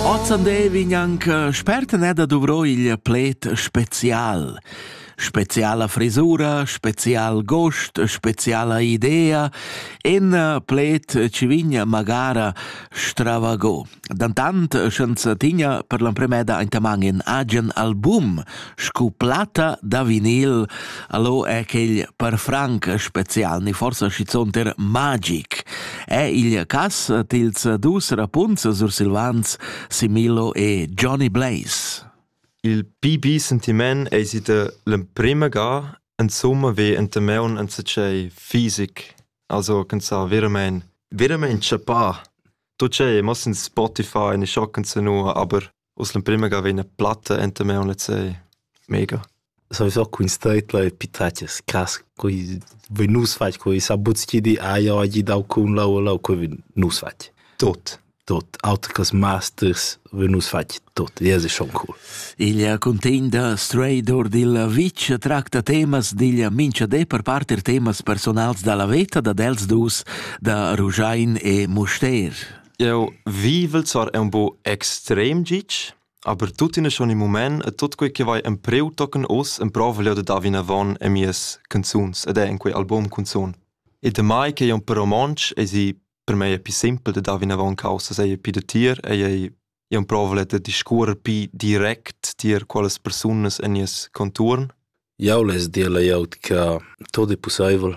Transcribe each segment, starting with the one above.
Ozzandevi gnanc spert n'è da duvro il pled spezial. Speziala frisura, spezial gost, speziala idea, en pled ci vigna magara stravago. Dantant, sch'ans tigna per l'empremeda aintamang in agen album, Scu platta da vinil allo è quel per franc special, ni forsa schizunt er magic. È il cass tils dus rapunzs sursilvans Similo e Johnny Blaze? Il pipi sentiment eis ita l'emprema ga, insomma ve enta meun enzatgei fisic, also ch'ins ha veramein veramein tschappà. Tu c'ei, mo sin Spotify, ne scho canzunua, aber Uss l'emprima ga vegn platta enta me en lezei. Mega. Sowieso quin steitler e pitaches cras coi vi nus fach coi sa buts chi di ah ja gi dau cun lau lau coi vi nus fach. Tot. Tot auter cos masters vi nus fach tot. Ja es schon cool. Il contegn da Stray Dor dil Vitg tracta temas digl mincha de per part er temas personals dalla veta da dels dus da Rugiain e Mustair. Jau vivel sar ün po extrem gitg, aber tuttina schon im mument e tut quei che vai empreu tochen uss emprovel jeu da dar vinavon a mias canzuns ed è in quei album cunzun. E damai che jeu per romontsch esi per mei è più simpel da dar vinavon causa sei più da tier e ei jeu provel da discuorer più direct tier quelles persunas en nies conturn. Jau less dir lajaut che tot è pussaivel.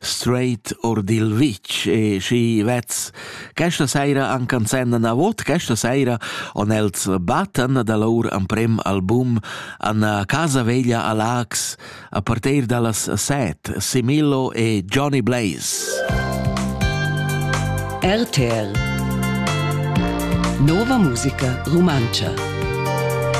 straight or dil vitg e schi vezs questa saira han canzenda navot questa saira on els battan da lur amprem album an casa veglia a Lax a partir dallas set Simillo e Johnny Blaze RTL Nova musica rumantscha